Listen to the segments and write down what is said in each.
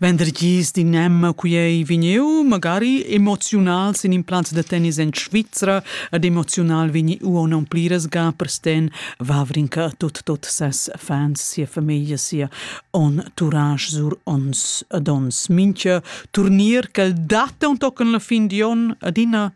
Vendergis d'in emma qui ei vegniu magari emoziunal sin in plaz da tennis en Svizra ed emoziunal vegni uon non pliras ga per sten Vavrinka tut tot ses fans sia famiglia sia on tourage sur ons dons mincha turnier quel dat un tochen la fin di on adina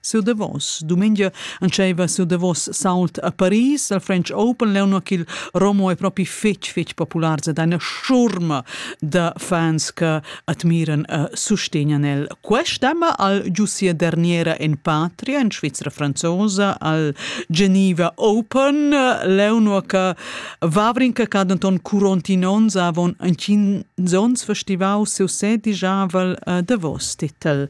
Sur davos dumengia entscheiva sur davos sault a Paris al French Open leu nua ch'il Romo è propi fetg fetg populars ed eine schurma da fans che admiran e sustegnan el. Questa ma al giussia derniera en patria en Svizra franzosa al Geneva Open leu nua che Vavrin che ca denton curonti onns avon entgins onns festivau seu sedijavel eh, davos titel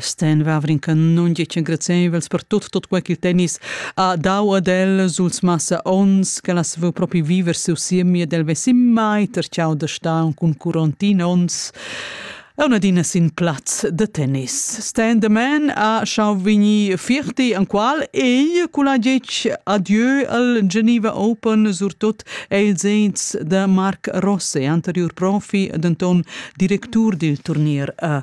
Sten Wawrinka nundic engraziaivels per tut tut quai ch'il tennis ha dau ad el suls massa ons ch'el as vo propi viver siu siemi ed el vesin mai terciau da star cun curontin ons un adina sin plaz de tennis. Stan the Man ha schau vegni firti an qual ei cula gec adieu al Geneva Open surtot el zeins de Marc Rosse, anterior profi denton directur dil turnier a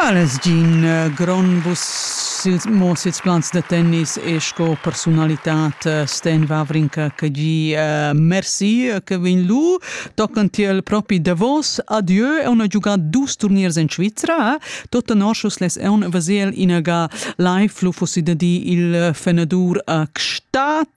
El es gin grond bus mo sils plans da tennis e sco persunalitad Sten Wawrinka che gi merci che vegn lu tochen tiel propi davos adieu e una giuga dus turniers en Svizra tot tenor schus les eun vesel inaga live lu fussi da di il fenadur a Gstaad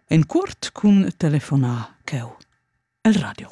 En cuort cun telefonar cheu el radio.